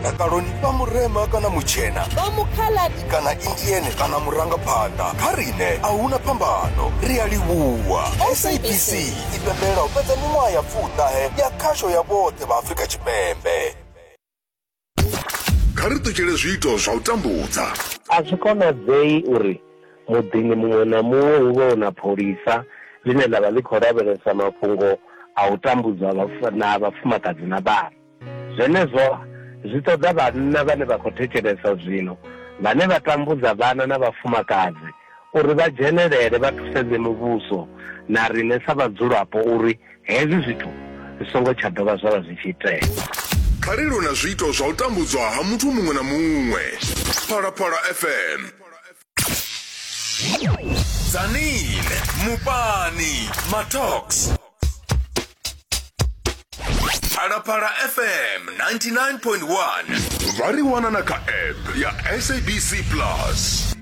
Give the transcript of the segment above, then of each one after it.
ndakaloni vha murema kana mutshena vha mukhaladi kana indiene kana murangaphanḓa kha riṋe a huna phambano ri a livhuwa sabc i pembela u fhedza miṅwaha ya pfuṱahe ya khasho ya vhoṱhe vha afrika tshipembe kha ri ṱutshele zwiito zwa u tambudza A zwi konadzei uri muḓini muṅwe na muṅwe hu vhe hu na pholisa ḽine ḽa vha ḽi khou lavhelesa mafhungo a u tambudzwa na vhafumakadzi na vhana. Zwenezwo zwi ṱoḓa vhanna vhane vha khou thetshelesa zwino vhane vha tambudza vhana na vhafumakadzi uri vha dzhenelele vha thusedze muvhuso na riṋe sa vhadzulapo uri hezwi zwithu zwi songo tsha dovha zwa vha zwi tshi itea. Kha ri lwe na zwiito zwa u tambudzwa ha muthu muṅwe na muṅwe. Phalaphala FM. Zanine, Mupani, Matox. Phalaphala FM 99.1 vha ri wana na kha app ya sabc plus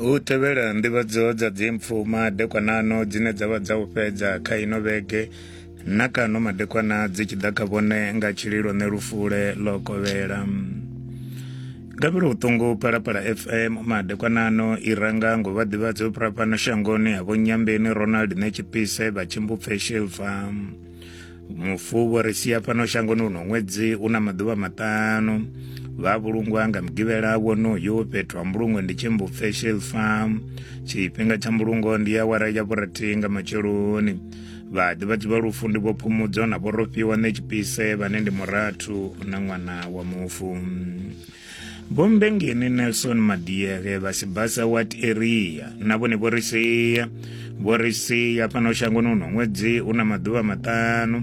U tevhela nḓivhadzo dza dzimpfu madekwanano dzine dza vha dza u fhedza kha ino vhege na kano madekwana dzi tshi ḓa kha vhone nga tshililo ne lufule ḽo kovhela gabelo vhuṱungu palapala fm madekwanano i ranga ngo vha ḓivhadza u fhira fhano shangoni ha vho nyambeni ronald netshipise vha tshimbupfe shilfa mufu vho ri sia fhano shangoni uno ṅwedzi u na maḓuvha maṱanu vha vhulungwa nga mugivhela wonoyo fhethu ha mbulungo ndi tshimbu facial farm tshifhinga tsha mbulungo ndi ya wara ya vhurathi nga matsheloni vhaḓi vha ḓivha lufu ndi vho phumudzo na vho rofhiwa ṋe tshipise vhane ndi murathu na ṅwana wa mufu vhombengeni nelson madiere vha sibasa wat area na vhone vho ri sia vho ri sia fhano shangoni uno ṅwedzi u na maḓuvha maṱanu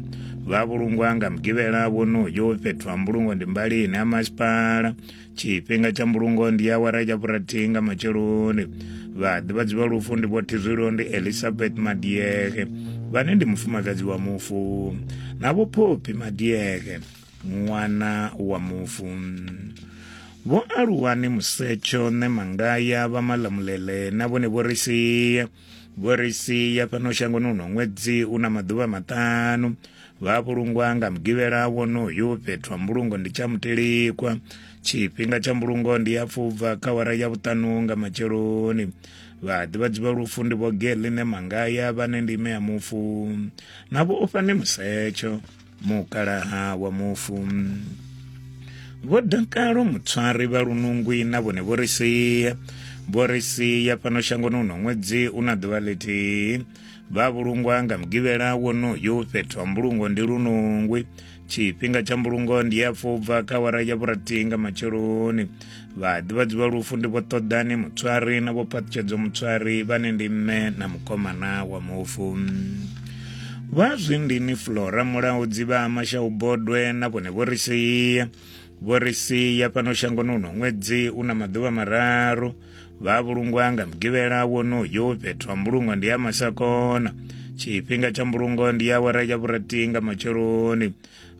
vha vhulungwa nga mugivhela vhonoyo fhethu ha mbulungo ndi mbalini ha masipala tshifhinga tsha mbulungo ndi awara ya vhurathihi nga matsheloni vhaḓivhadzi vha lufu ndi vho thizwilo ndi elizabeth madiege vhane ndi mufumakadzi wa mufu na vho phophi madiege ṅwana wa mufu vho aluwa ni musetsho ne mangaya vha malamulele na vhone vho ri sia vho ri sia fhano shangoni uno ṅwedzi u na maḓuvha maṱanu vha vhulungwa nga mugivhela wonoyo fhethu ha mbulungo ndi tsha mutelikwa tshifhinga tsha mbulungo ndi ya pfubva kha wara ya vhuṱanu nga matsheloni vhaḓivhadzi vha lufu ndi vho geline mangaya vhane ndi ime ya mufu na vho ofhane musetsho mukalaha wa mufu vho dakalo mutswari vha lunungwi na vhone vho ri sia vho ri sia fhano shangoni uno ṅwedzi u na ḓuvha ḽithihi vha vhulungwa nga mugivhela wonoyu fhethu ha mbulungo ndi lunungwi tshifhinga tsha mbulungo ndi ya fubva kha wara ya vhurathi nga matsheloni vhaḓivhadzi vha lufu ndi vho ṱoḓani mutswari na vho phaṱhutshedzo mutswari vhane ndi mme na mukomana wa mufu vha zwindini flora mulaudzi vha amashau bodwe na vhone vho ri sia vho ri sia fhano shangoni uno ṅwedzi u na maḓuvha mararu vha vhulungwa nga mugivhela wonoyo fhethu ha mbulungo ndi ya masakona tshifhinga tsha mbulungo ndi awara ya vhurathi nga matsheloni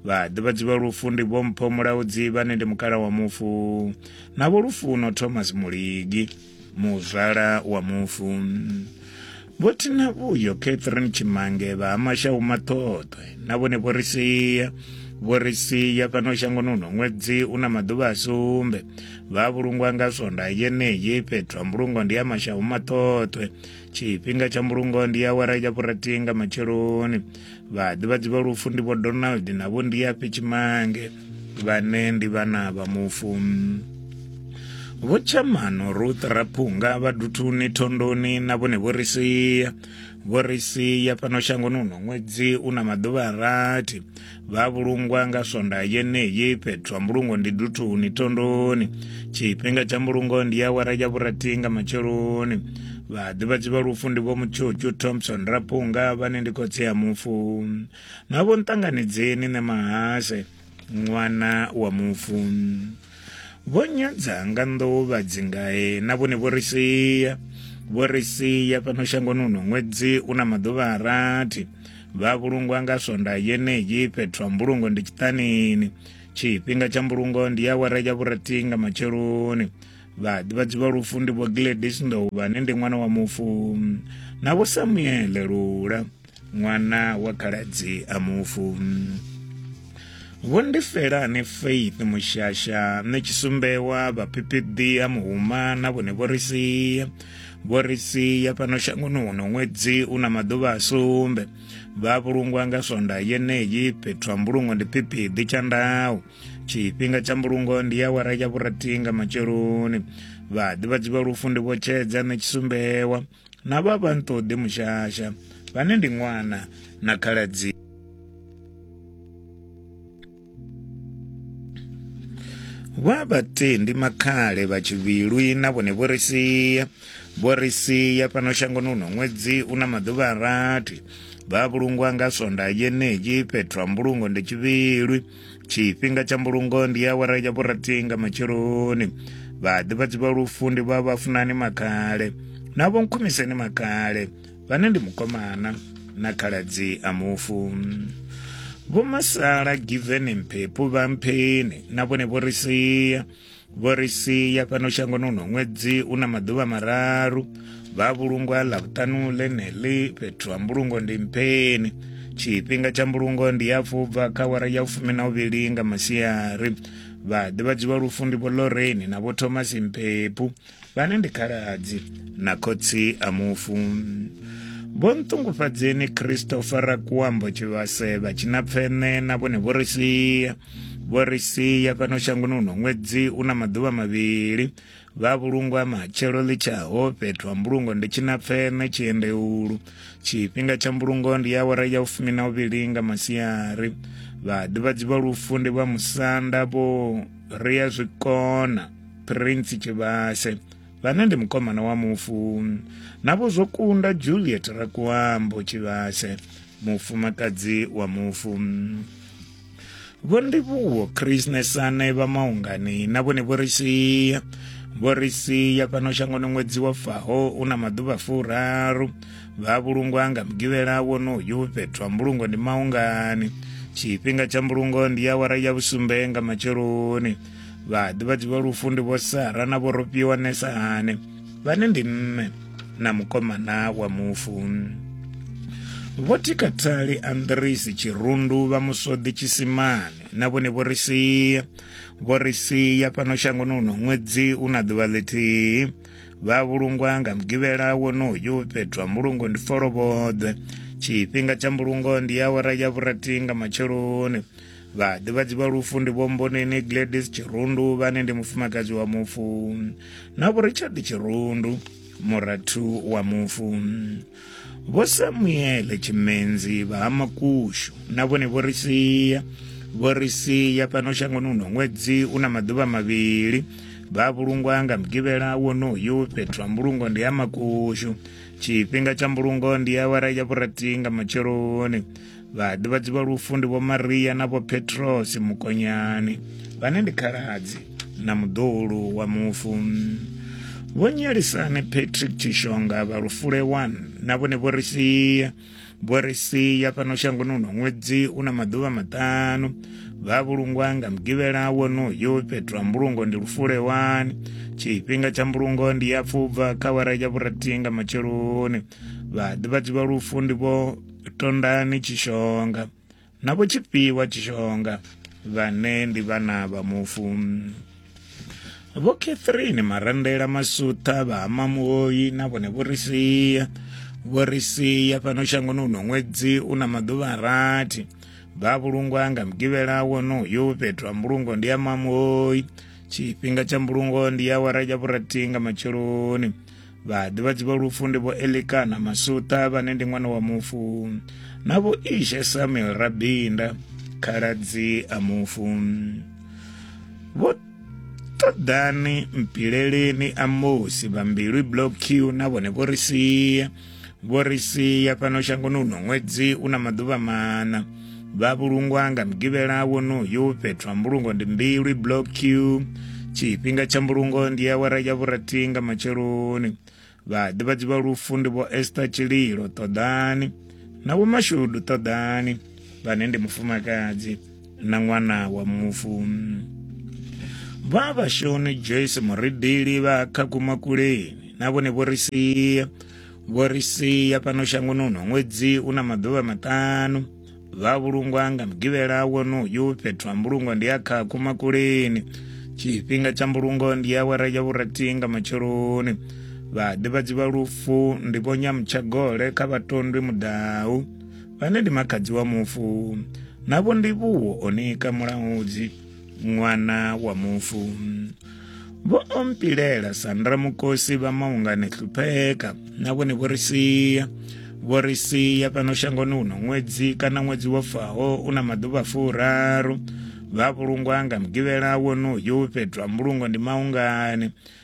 vha ḓivhadzi vha lufu ndi vhompho mulaudzi vhane ndi mukala wa mufu na vho lufuno thomas muligi muzwala wa mufu vho thina vhuyo catherine tshimange vha hamashau maṱhoṱwe na vhone vho ri sia vho ri sia fhano shangoni uno ṅwedzi u na maḓuvha a sumbe vha vhulungwa nga swonda yeneyi fhethu ha mbulungo ndi ya mashau maṱhoṱwe tshifhinga tsha mbulungo ndi awara ya vhurathi nga matsheloni vhaḓivhadzi vha lufu ndi vho donald na vho ndiyafhe tshimange vhane ndi vhana vha mufu vho tshamano ruth raphunga vha duthuni thondoni na vhone vho ri sia vho ri sia fhano shangoni uno ṅwedzi u na maḓuvha a rathi vha vhulungwa nga swonda yeneyi fhethu ha mbulungo ndi duthuni thondoni tshifhinga tsha mbulungo ndi awara ya vhurathi nga matsheloni vhaḓivhadzi vha lufu ndi vho mutshutshu thompson rapunga vhane ndi khotsi ya mufu na vho nṱanganidzeni ne mahase ṅwana wa mufu Vho nyadza nga nḓuvha dzingae na vhone vho ri sia vho ri sia fhano shangoni uno ṅwedzi u na maḓuvha a rathi vha vhulungwa nga swonda yeneyi fhethu ha mbulungo ndi tshiṱanini tshifhinga tsha mbulungo ndi ya awara ya vhurathi nga matsheloni vhaḓivhadzi vha lufu ndi vho gladis ndovha ne ndi ṅwana wa mufu na vho samuele lula ṅwana wa khaladzi a mufu vho ndi felani faith mushasha nṋe tshisumbewa vhaphiphiḓi ha muhuma na vhone vho ri sia vho ri sia fhano shangoni huno ṅwedzi u na maḓuvha a sumbe vha vhulungwa nga swonda yeneyi fhethu ha mbulungo ndi phiphiḓi tsha ndawu tshifhinga tsha mbulungo ndi ya wara ya vhurathi nga matsheloni vhaḓivhadzi vha lufu ndi vho tshedza nṋe tshisumbewa na vha vha nṱoḓe mushasha vhane ndi ṅwana na khaladzi vha vhatendi makhale vha tshivhilwi na vhone vho ri sia vho ri sia fhano shangoni uno ṅwedzi u na maḓuvha a rathi vha vhulungwa nga swonda yenei fhethu ha mbulungo ndi tshivhilwi tshifhinga tsha mbulungo ndi awara ya vhurathi nga matsheloni vhaḓivhadzi vha lufu ndi vha vhafunani makale na vho nkhumiseni makale vhane ndi mukomana na khaladzi a mufu vho masala giveni mphephu vha mpheni na vhone vho ri sia vho ri sia fhano shangoni uno ṅwedzi u na maḓuvha mararu vha vhulungwa ḽa vhuṱanu ḽeneḽi fhethu ha mbulungo ndi mpheni tshifhinga tsha mbulungo ndi ya fubva kha wara ya fumi na uvhili nga masiari vhaḓivhadzwi vha lufu ndi vho loreni na vho thomas mphephu vhane ndi khaladzi na khotsi a mufu vho nṱungufhadzeni christopher kuambo tshivhase vha tshina pfene na vhone vho ri sia vho ri sia fhano shangoni uno ṅwedzi u na maḓuvha mavhili vha vhulungwa matshelo ḽitshaho fhethu ha mbulungo ndi tshina pfene tshiendeulu tshifhinga tsha mbulungo ndi ya awara ya ufumi na uvhili nga masiari vhaḓivhadzi vha lufu ndi vha musanda vho ri ya zwikona prince tshivhase vhane ndi mukomana wa mufu navho zwo kunda juliet rakuambo tshivhase mufumakadzi wa mufu vho ndivhuwo krisnesane vha maungani na vhone vho ri sia vho ri sia fhano shangoni ṅwedzi wa faho u na maḓuvha furaru vha vhulungwa nga mugivhela wonoyu fhethu ha mbulungo ndi maungani tshifhinga tsha mbulungo ndi awara ya vhusumbe nga matsheloni vhaḓivhadzi vha lufu ndi vho sara na vho rofhiwa nesahane vhane ndi mme na mukomana wa mufu vho tikatali andrisi tshirundu vha musodi tshisimane na vhone vho ri sia vho ri sia fhano shangoni uno ṅwedzi u na ḓuvha ḽithihi vha vhulungwa nga mugivhela wonoyu fhethu ha mbulungo ndi folovhoḓwe tshifhinga tsha mbulungo ndi awara ya vhurathi nga matsheloni Vhaḓivhadzi vha lufu ndi Vho Mboneni Gladys Tshirundu vhane ndi mufumakadzi wa mufu na Vho Richard Tshirundu murathu wa mufu. Vho Samuele Tshimenzi vha ha Makushu na vhone vho ri sia vho ri sia fhano shangoni uno ṅwedzi una maḓuvha mavhili vha vhulungwa nga mugivhela wonoyu fhethu ha mbulungo ndi ha makushu tshifhinga tsha mbulungo ndi awara ya vhurathi nga matsheloni vhaḓivhadzi vha lufu ndi vho maria na vho petrosi mukonyani vhane ndi khaladzi na muḓulu wa mufu vho nyalisane patrick tshishonga vha lufule 1 na vhone vho ri sia vho ri sia fhano shangoni uno ṅwedzi u na maḓuvha maṱanu vha vhulungwa nga mugivhela wonoyo fhethu ha mbulungo ndi lufule 1 tshifhinga tsha mbulungo ndi ya pfubva kha wara ya vhurathi nga matsheloni vhaḓivhadzi vha lufu ndi vho tondani tshishonga na vho tshifhiwa tshishonga vhane ndi vhana vha mufu vho catherine marandela masutha vha hamamuoyi na vhone vho ri sia vho ri sia fhano shangoni uno ṅwedzi u na maḓuvha a rathi vha vhulungwa nga mugivhela wonoyo fhethu ha mbulungo ndi ya mamuoyi tshifhinga tsha mbulungo ndi ya wara ya vhurathi nga matsheloni vhaḓivhadzi vha lufu ndi vho elikana masuṱa vhane ndi ṅwana wa mufu na vho ishe samuel rabinda khaladzi a mufu vho ṱoḓani mpileleni a mosi vha mbilwi block q na vhone vho ri sia vho ri sia fhano shangoni uno ṅwedzi u na maḓuvha maṋa vha vhulungwa nga mugivhela wonoyu fhethu ha mbulungo ndi mbilwi block q tshifhinga tsha mbulungo ndi awara ya vhurathi nga matsheloni vhaḓivhadzi vha lufu ndi vho ester tshililo ṱoḓani na vho mashudu ṱoḓani vhane ndi mufumakadzi na ṅwana wa mufu vha vhashoni joyce muridili vha khakumakuleni na vhone vho ri sia vho ri sia fhano shangoni uno ṅwedzi u na maḓuvha maṱanu vha vhulungwa nga mugivhela wonoyu fhethu ha mbulungo ndi a kha kumakuleni tshifhinga tsha mbulungo ndi awara ya vhurathi nga matsheloni vhaḓivhadzi vha lufu ndi vho nyamutshagole kha vhatondwi mudau vhane ndi makhadzi wa mufu navho ndivhuwo onika mulaudzi ṅwana wa mufu vho ompilela sandra mukosi vha maungani hlupheka na vhone vho ri sia vho ri sia fhano shangoni uno ṅwedzi kana ṅwedzi wo faho u na maḓuvha furaru vha vhulungwa nga mugivhela wonoyu fhethu ha mbulungo ndi maungani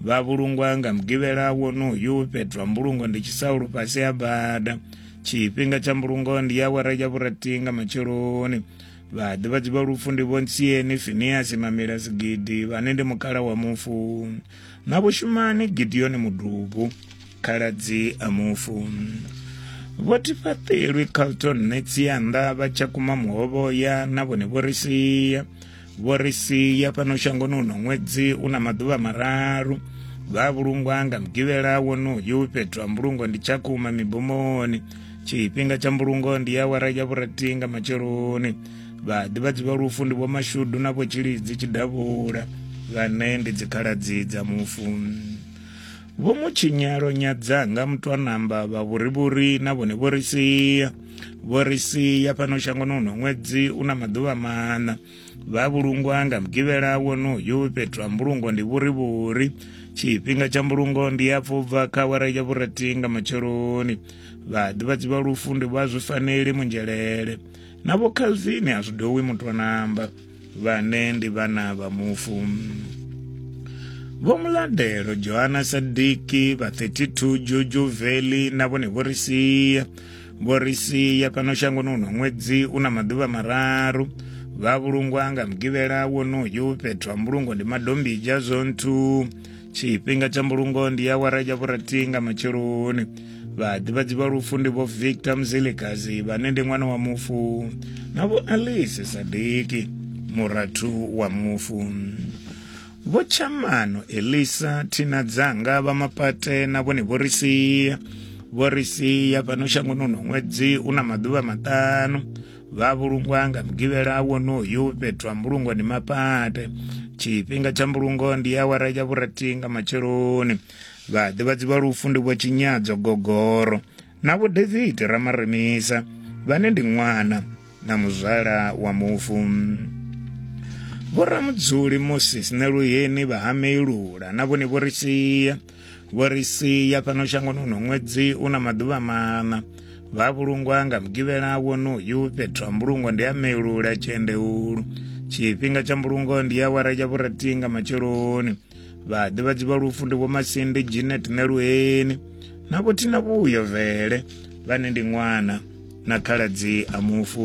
vha vhulungwa nga mugivhela wonoyu fhethu ha mbulungo ndi tshisaulu fhasi ha bada tshifhinga tsha mbulungo ndi ya awara ya vhurathi nga matsheloni vhaḓivhadzi vha lufu ndi vhontsieni finiasi mamila sigidi vhane ndi mukhala wa mufu na vhushumani gideoni mudubu khaladzi a mufu vho tifhaṱelwi carlton netsianda vha tsha kuma muhovhoya na vhone vho ri sia vho ri sia fhano shangoni uno ṅwedzi u na maḓuvha mararu vha vhulungwa nga mugivhela wonoyu fhethu ha mbulungo ndi tshakuma mibomoni tshifhinga tsha mbulungo ndi ya wara ya vhurathi nga matsheloni vhaḓivhadzi vha lufu ndi vhomashudu na vhotshilidzi tshidavhula vhane ndi dzikhaladzi dza mufu Vho Mutshinyalo Nyadzanga Mutwanamba vha Vhurivhuri na vhone vho ri sia vho ri sia fhano shangoni uno ṅwedzi u na maḓuvha maṋa vha vhulungwa nga mugivhela wonoyu fhethu ha mbulungo ndi vhurivhuri tshifhinga tsha mbulungo ndi ya pfubva kha awara ya vhurathi nga matsheloni vhaḓivhadzi vha lufu ndi vha zwi faneli munzhelele na vho calvin a zwi dowi mutwanamba vhane ndi vhana vha mufu Vho Muladelo, Johanna Sadiki, vha 32 Juju Veli na vhone vho ri sia. Vho ri sia fhano shangoni uno ṅwedzi u na maḓuvha mararu. Vha vhulungwa nga mugivhela wonoyu fhethu ha mbulungo ndi Madombija Zone 2. tshifhinga tsha mbulungo ndi awara ya vhurathi nga matsheloni vhaḓivhadzi vha lufu ndi vho victor mzilikazi vhane ndi ṅwana wa mufu na vho alice sadiki murathu wa mufu vho tshamano elisa thina dzanga vha mapate na vhone vho ri sia vho ri sia fhano shangoni uno ṅwedzi u na maḓuvha maṱanu vha vhulungwa nga mugivhela wonoyu fhethu ha mbulungo ndi mapate tshifhinga tsha mbulungo ndi awara ya vhurathi nga matsheloni vhaḓivhadzi vha lufu ndi vho tshinyadzo gogoro na vho david ramaremisa vhane ndi ṅwana na muzwala wa mufu vho ramudzuli moses neluyeni vha hameilula na vhone vho ri sia vho ri sia fhano shangoni uno ṅwedzi u na maḓuvha maṋa vha vhulungwa nga mugivhela wonoyu fhethu ha mbulungo ndi a melula tshiendeulu tshifhinga tsha mbulungo ndi awara ya vhurathi nga matsheloni vhaḓivhadzi vha lufu ndi vhomasindi ginet ṋeluheni na vhothina vhuyo vele vhane ndi ṅwana na khaladzi a mufu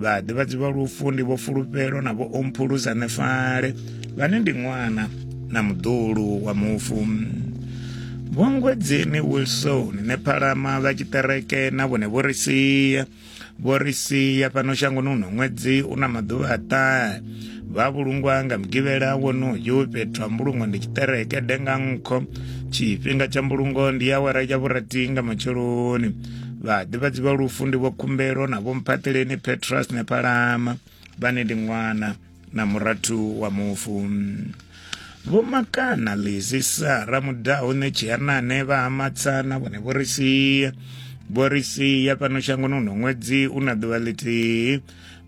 vhaḓivhadzi vha lufu ndi vho fulufhelo na vho omphulusa nefale vhane ndi ṅwana na muḓulu wa mufu vhongwedzeni wilson nephalama vha tshiṱereke na vhone vho ri sia vho ri sia fhano shangoni uno ṅwedzi u na maḓuvha a ṱahe vha vhulungwa nga mugivhela wonoyu fhethu ha mbulungo ndi tshiṱereke denga nkho tshifhinga tsha mbulungo ndi awara ya vhurathi nga matsheloni vhaḓivhadzi vha lufu ndi vho khumbelo na vho mphaṱeleni petras nepalama vhane ndi ṅwana na murathu wa mufu vho makana lizi sara mudaho ne tshiyanane vha hamatsana vhone vho ri sia vho ri sia fhano shangoni uno ṅwedzi u na ḓuvha ḽithihi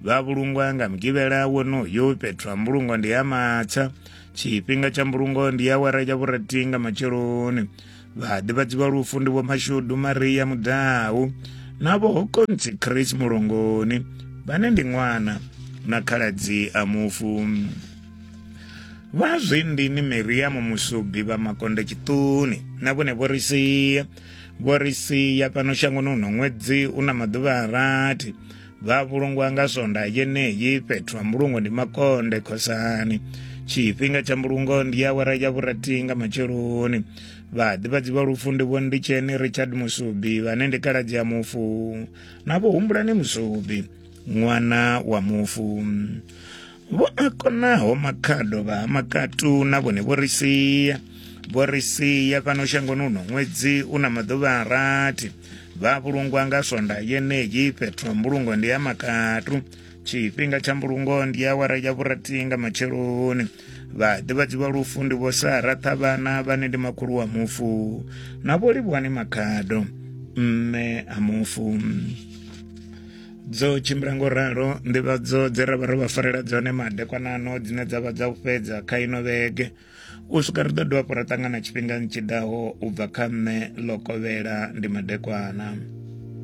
vha vhulungwa nga mugivhela wonoyo fhethu ha mbulungo ndi ya matsha tshifhinga tsha mbulungo ndi awara ya vhurathi nga matsheloni vhaḓivhadzi vha lufu ndi vho mashudu maria mudau na vho hokontsi chris mulongoni vhane ndi ṅwana na khaladzi a mufu vha zwindini miriamu musubi vha makonde tshiṱuni na vhone vho ri sia vho ri sia fhano shangoni huno ṅwedzi u na maḓuvha a rathi vha vhulungwa nga sonda yeneyi fhethu ha mbulungo ndi makonde khosani tshifhinga tsha mbulungo ndi awara ya vhurathi nga matsheloni vhaḓivhadzi vha lufu ndi vho nditsheni richard musubi vhane ndi kaladzi ya mufu na vho humbulani musubi ṅwana wa mufu vho a konaho makhado vha ha makatu na vhone vho ri sia vho ri sia fhano shangoni uno ṅwedzi u na maḓuvha a rathi vha vhulungwa nga swonda yeneyi fhethu ha mbulungo ndi ya makatu tshifhinga tsha mbulungo ndi ya wara ya vhurathi nga matsheloni vhaḓivhadzi vha lufu ndi vho sara ṱhavhana vhane ndi makhulu wa mufu na vho livhuwani makhado mme a mufu dzo tshimbila ngo ralo nḓivhadzo dze ra vha ro vha farela dzone madekwanano dzine dza vha dza u fhedza kha ino vhege u swika ri ḓo dovha hafhu ra ṱangana tshifhingani tshi ḓaho u bva kha nṋe ḽo kovhela ndi madekwana